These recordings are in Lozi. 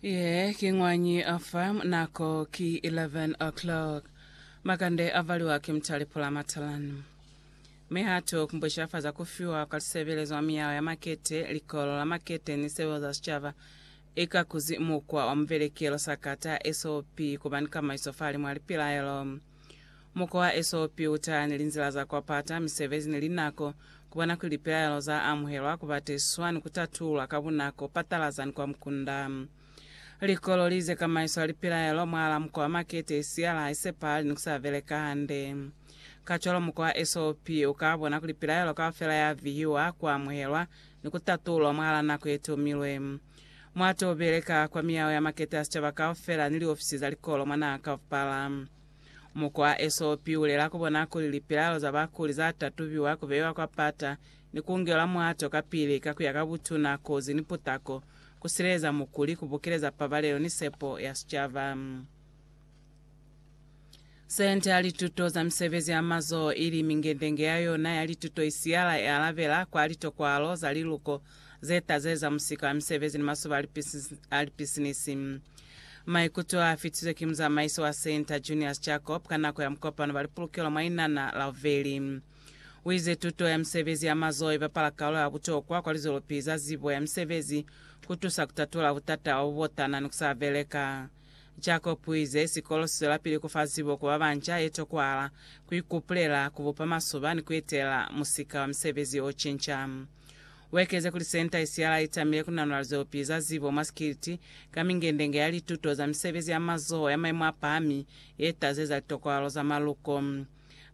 Ye ki ñwañi a fa, nako ki 11 o'clock. Makande a valiwa ki mutali pula matalanu. Mi ha tu kumbusha fa za ku fiwa kwa lisebelezo mwa miyao ya makete, likolo la makete ni sebelezo za sicaba i ka kuzi mukwa wa muvelekelo sakata, SOP, ku ba ni kamaiso fa halimu ha lipilaelo. Mukwa wa esopi uta ni linzila za kwapata, misebezi ni linako, kubona kuli lipilaelo za amuhelwa, kubatiswa, ni kutatulwa ka bunako, patalaza ni kwa mukunda. Likololi ze kamaiswa lipilaelo mwahala mukwa wa makete i siya la haisepahali ni kusa beleka hande. Kacwalo mukwa wa esopi uka bona kuli pilaelo kaufela ya vihiwa, kuamuhelwa, ni kutatulwa mwahala nako ye tomilwe. Mwa to beleka kwa miyao ya makete a sicaba kaufela ni liofisi za likolo mwa naha kaupala. Muku wa SOP ulela ku bona kuli lipilalo za bakuli za tatubiwa, ku beiwa kwa pata, ni ku ngelwa mwato kapili ka ku ya ka butuna, kozi, ni putako, ku sileleza mukuli, ku bukeleza pabalelo ni sepo ya sicaba. Sente ya Lituto za Misebezi ya Mazoho ili mingendenge ya yona ya lituto isiyala i alabela kwa litokwalo za liluko ze taze za musika wa misebezi ni masoba a lipisinisi. Maikuto a fitiswe ki muzamaisi wa Sente, Junius Jacob, ka nako ya mukopano ba lipulukelo mwa inana la Uveli. U ize tuto ya misebezi ya mazoho i bapala kalulo ya butokwa kwa lizwelopihi za zibo ya misebezi ku tusa ku tatula butata bwa bubotana ni ku sa beleka. Jacob uize, Sikolo siswelapili kufa zibo ku babanca, itokwala, kuikupulela, kubupa masoba, ni kuetelela musika wa misebezi ocinca. Uekeze kuli senta isialaa itamile kunanula lizeopi za zibo mwa sikiliti ka mingendenge ya lituto za misebezi ya mazoho ya maimo apahami yetazeza litokwalo za maluko.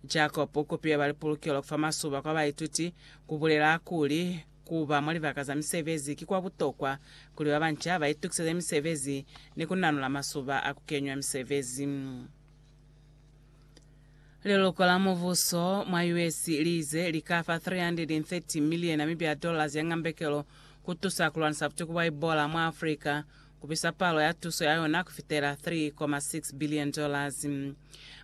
Jacob ukupile ba lipulukelo kufa masoba kwa baituti, kubulela kuli, Ku ba mwa libaka za misebezi ki kwa butokwa kuli ba banca ba itukiseze misebezi ni ku nanula masuba a ku kenywa misebezi. Liloko la mubuso mwa US li ize li ka fa 330 miliye Namibia ya dollars ya ngambekelo ku tusa ku lwanisa butuku bwa Ebola mwa Africa, ku bisa palo ya tuso ya yona ku fitela 3.6 billion dollars.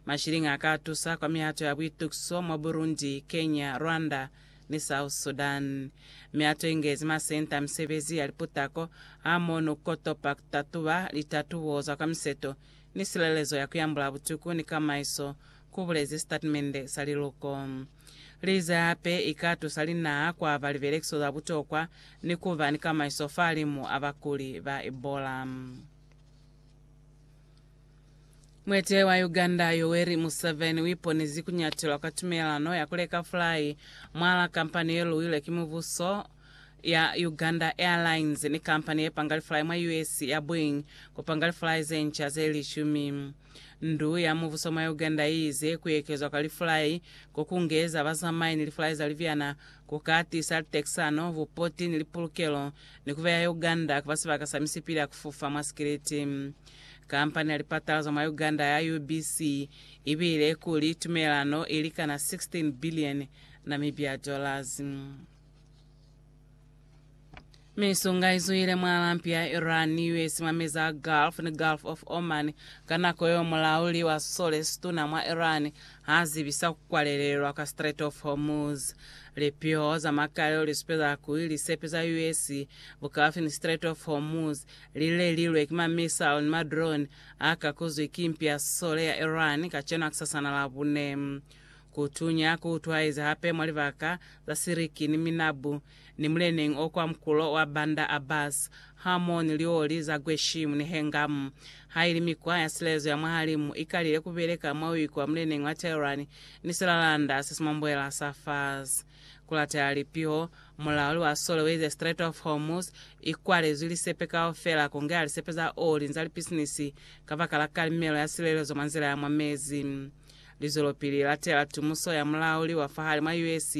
Mashilingi a ka tusa kwa mihato ya buitukiso mwa Burundi, Kenya, Rwanda, ni South Sudan. Mi atuingezi masenta a misebezi ya liputako hamono kotopa kutatuba litatubo za kwa miseto ni silelezo ya kuyambula butuku ni kamaiso, kubulezi sitatimende sa liluko. Lize hape ikatusa linaha kuaba libelekiso za butokwa ni kuba ni kamaiso fahalimu a bakuli ba Ebola. Mueteleli wa Uganda Yoweri Museveni uiponezi kunyatelwa kwa tumelelano ya kuleka fulai mwala kampani yeluwilwe ki mubuso ya Uganda Airlines ni kampani yepanga lifulai mwa US ya Boeing kupanga lifulai zenca ze lishumi. Ndu ya mubuso mwa Uganda iize kuekezwa kwa lifulai ko kungeza bazamai ni lifulai za libyana kuka tiisa litekisano, bupoti ni lipulukelo ni kubeya Uganda kuba sibaka sa misipili ya kufufa mwa sikiliti. Kampani ya lipatala za mwa Uganda ya UBC i bile kuli tumelano i likana 16 bilioni Namibia dollars. Misunga i zwile mwa lampi ya Iran ni US mwa meza a Gulf ni Gulf of Oman ka nako yeo mulauli wa sisole situna mwa Iran ha zibisa ku kwalelelwa kwa Strait of Hormuz. Lipiho za makalelo li supeza kuli lisepe za US bukafi ni Strait of Hormuz Lilelilwe ki ma missile ni ma drone a kakuzwi ki mpi ya sisole ya Iran kacenu hakusasana Labune. Kutunya ku utwaezi hape mwa libaka za Siriki ni Minabu ni muleneñi o kwa mukulo wa Bandar Abbas hamoho ni lioli za Gueshimu ni Hengam. Haili mikwa ya silelezo ya mwahalimu i kalile ku beleka mwa uikwa muleneñi wa Tehran ni silalanda se si mwa mbuela sa Fars, Kulatela lipiho, mulao li wa sole uize Strait of Hormuz i kwalezwi lisepe kaufela ku ngeha lisepe za oli ni za lipisinisi kabakala kalimelo ya silelezo mwa nzila ya mwa mezi. Lizwelopili li latela tumuso ya mulauli wa fahali mwa US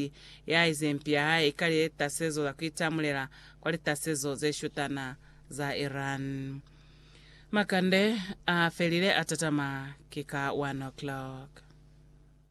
ya ize mpi ya hae i ka litasezo za ku itamulela kwa litasezo ze shutana za Iran. Makande a felile a tatama ki ka one o'clock.